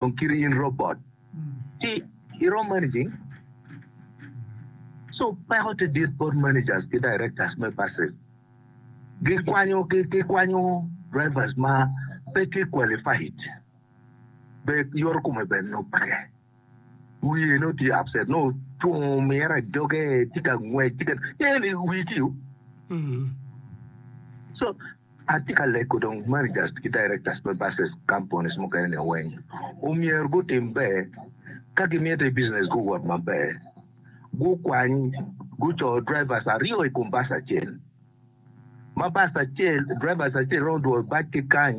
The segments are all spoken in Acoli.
Dong kiti in robot ci irom managing so peko tye dit bot managers ki directors me buses gi kwanyo ki kwanyo drivers ma pe tye qualified bed yoto kome bene nongo peke wiye nongo tye upset nongo ocung omyero ajoge tye ka ngwec tye ka eni wii ci u so Atye ka lego dong managers ki directors me buses companies mukene ni weng omyero gutim ber ka gimito business gi owot maber gukwany gucoo drivers aryo ikom bus acel ma bus acel drivers acel romo dwoyo bac ki kany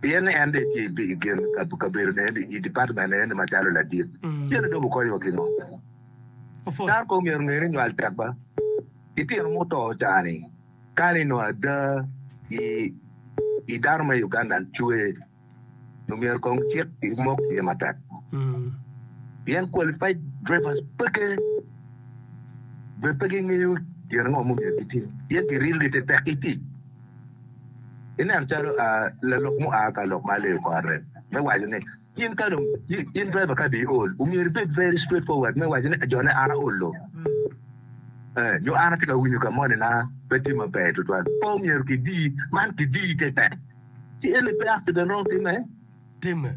pien ni en dong etye i gin kabedone i dipatmennene ni macalo ladit. Cene dong wukonyowa ki ngo? Tar kong myero nge ni nywal tek ba ki tino ma oto cani kani i nongo ada i dano me Uganda cwer nyo myero kong cik ki mok tye matek pien qualified drivers peke bene pe gingeyo gin ango ma omyero gitim pien kirilgi te tek ki tic. Ineno calo lalok mua ka lok ma aleo kore me waco ni in ka dong in driver ka dong iol omyero ibed very straight forward me waco ni jone an aolo nyo an atye ka winyo ka moni na pe tye maber tutwal pe omyero kidi man kidi keken ci eni pe accident romo time. timme.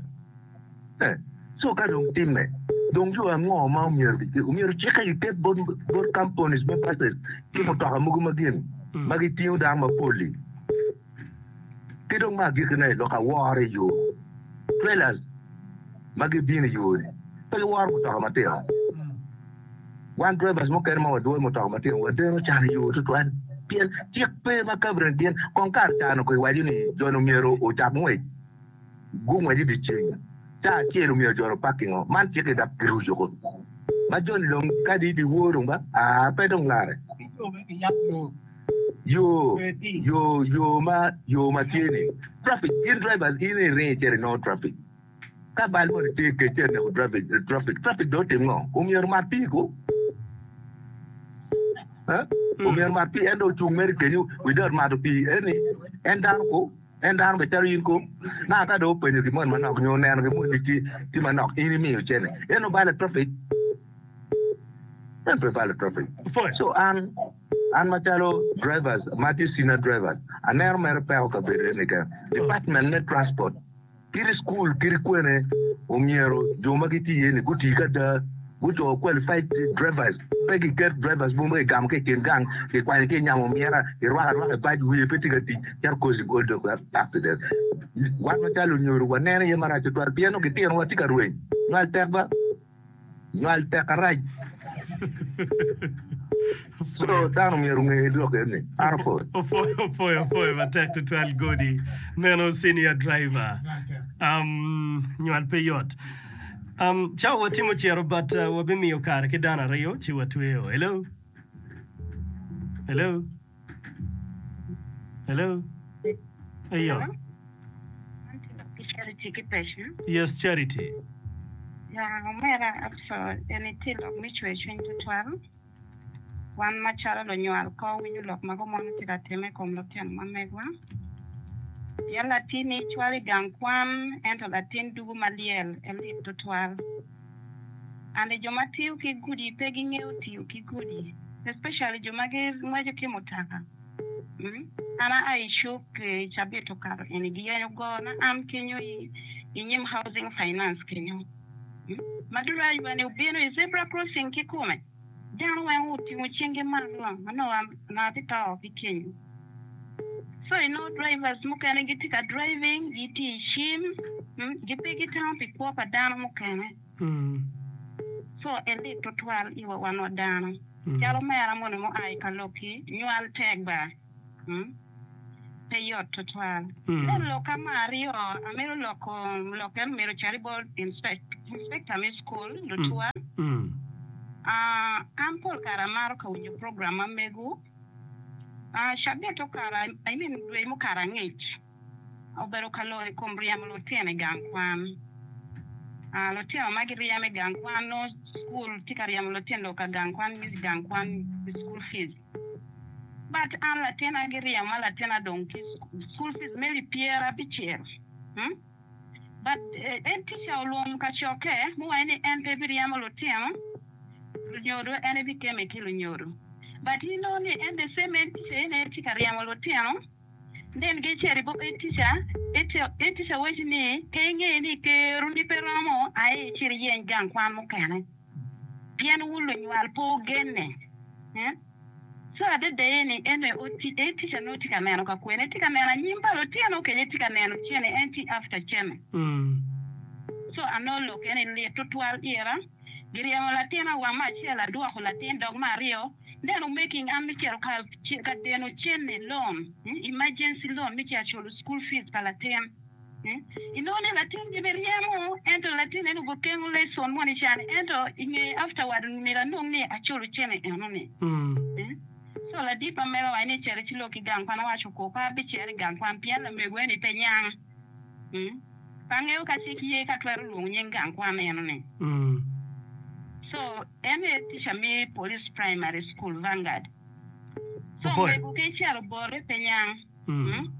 Eh, so ka dong timme, dong yo ango ma omyero gicik? Omyero cikke giket bot bot companies me buses ki mutoka mogo ma gin ma gitingo dano mapol-li. Ki dong me agikkine, lok aworo i yo, trailers ma gibino i yo-ni pe giworo mutoka matino. Wan drivers mukene ma wadwoyo mutoka matino wadeno can i yo tutwal pien cik pe ma kabinet gin kong kare cano-gi waco ni joni omyero ocak ngwec. Gu ngwec idye ceng caa acel omyero ojolo pak kingo man cik idap pi ruco kodi ma joni dong kadi idye wor dong ba aa pe dong lare yo yo yo ma yo ma tye ni traffic in drivers in iringo icito inongo traffic ka bal moni tye kec ci aneko drivers traffic traffic dong otim ngo omyero mar pii ko omyero mar pii en dong ocung mere kenyo without mato pii eni en dano ko. En dano bene calo in kong. Naka ka dong openyo gin moni manok nyo oneno gin moni ni tye manok, in imiyo cene. En obalo traffic? En pe balo traffic. So an, an macalo drivers ma tye senior drivers, aneno mere peko kabedo eni keken. Department me transport. Kit school kit kwene omyero jo ma gitye iye ni guti ki ada, gucoo qualified drivers pe ki ket drivers mogo ma ki gamo ki i kin gang ki kwanyo ki nyamo omyera ki rwako arwaka bac wiye pe tye ka tic cito cause of all those accident. Wan macalo lunyodo wa neno iye marac tutwal pien nongo gitino wa tye ka rweny nywal tek ba. Nywal tek arac. So dano myero onge lok eni. Arful. Opwoyo apwoya matek tutwal Godi meno senior driver um, nywal pe yot um, cawa watimo ciro but uh, wabimiyo kare ki dano aryo ci watweyo hello hello Hello? Eyo. Hello? Charity ki Pecna. Yes, Charity. Ya, omera aco en itye lok me cwer cwiny tutwal. Wan macalo lunywal ko winyo lok ma gumon itye ka time i kom lutino ma megwa. Pien latinni cwalo i gang kwan, ento latin dugu ma lyel elit tutwal. and jo ma tiyo ki gudi pe gingeyo tiyo ki gudi especially jo ma gingweco ki mutoka an a a i cuk cabit okato eni giyenyo gona am kenyo i nyim housing finance kenyo ma duru aywa ni obino i zebra crossing kikome. Dano weng otingo cingi malo ma onongo anga ti to ki kenyo. So inongo drivers mukene giti ka driving giti i cim, gi pe gitamo pi kwo pa dano mukene. So elit tutwal iwa wan wa dano. Calo omera moni mua i ka lok-ki, nywal tek ba. Pe yot tutwal. Leb lok ka ma aryo a mito loko lok eno myero ocar i bot inspekta me cukul, lutwal. An pol kare amaro ka winyo program ma megu. Cabit okato, I mean dwe mukato angec, obedo ka lok i kom ryemo lutino i gang kwan. Lutino ma giryemo i gang kwan nongo cukul tye ka ryemo lutino ka gang kwan, miss gang kwan, school fees. But an latina giryema ma latina dong tye school, school fees me lip pyere abicel umm but en teacher olwong kacokke muwaco ni en pe biryemo lutino lunyodo en ebikeme ki lunyodo but inongo ni en the same en teacher eni aye tye ka ryemo lutino. Nen geccer i buk Etica, Etica waci ni, Ka ingeyo ni keroni pe romo, aye icit iyeny gang kwan mukene, pien wun lunywal pe wugenne. Co adada eni, en aye Etica nongo tye ka neno ka kwene? Etye ka neno anyim pa lutino kenyo? Etye ka neno cene? En tye after cene? Co anongo lok eni lit tutwal ira. Giryemo latin awama acel adwoko latin dog me aryo, nen omaking an me cito ka ka deno cene loan, emergency loan me cito culo school fees pa latin. Inongo ni latin gin iryemo ento latin eno gukengo lesson moni can ento inge afterward myero anong ni aculo cene eno ni. So ladit ma mega wa en aye cito ci lok ki gang kwan awaco kor pe abicito i gang kwan pien lamego eni pe nyang. Pe angeyo ka cik ye ka twero lwongo nying gang kwan meno ni. So en aye teacher me Police Primary School, Vanguard. So omego ki calo obote pe nyang.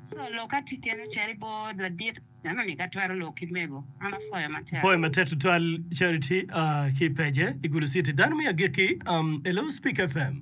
So lok ka tye kene ocito i bor ladit meno ni ka twero lok ki mego. An apwoyo matek. Apwoyo matek tutwal Charity ki i page, i Gulu City. Dano me agikki, Hello Speak FM.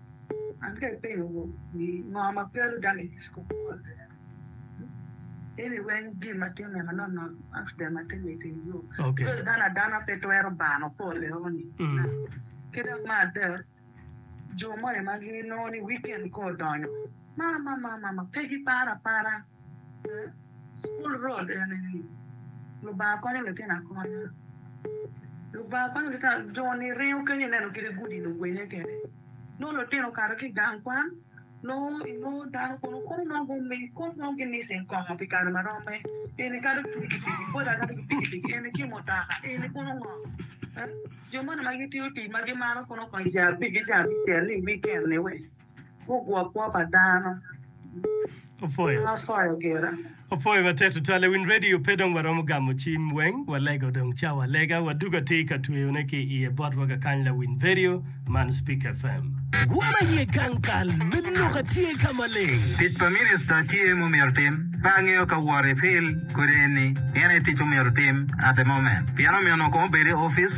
An ka ipenyo gu ni ngo ma kelo dano i disco ball te en ini weng gin ma timme ma nono accident ma timme iteng yo because dano adana pe twero bano pole eno ni ki dok me adek jo moni ma gi nongo ni weekend ka odonyo ma ma ma ma ma pe gi paro apara. School role eni ni Lubanga konyo litino akonya. Lubanga konyo litino akonya. Jo ni ringo kenyo ineno kit gudi ni ogwenge kede. Nongo litino okato ki gang kwan nongo inongo dano kono kono nongo gumi kono nongo gi missing kongo pi kare ma romme. Eni kado ki piki piki boda kado ki piki piki eni ki mutoka eni kono ngo. Jo moni ma gitiyo tic ma gimaro kono kong ca abicel ni weekend ni we. Gugwo kwo pa dano Opwoyo. ma pwoyo gira. Opwoyo matek tutwal i Win Radio pe dong waromo gamo cim weng walega odong cawa lega wadugo atir i ka tweyone ki iye bot wa kakany la Win Radio man Spik FM. Wa ma ye gang kal me lok a tye ka maleng. Tic pa minista tye mumyero tim. Pe angeyo ka wor i fil kodi eni. Pien aye tic mumyero tim at the moment. Pien omyeno kong obed i office.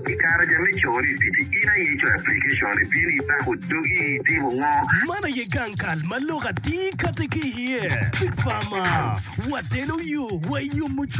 I kare ja me coro i pici, in aye icoyo aplikecon, ibino ibako dogi, itimo ngo? Man aye gang kal ma lok atir kati ki iye. Big Pharma, wateno yo, wayomo cwiny.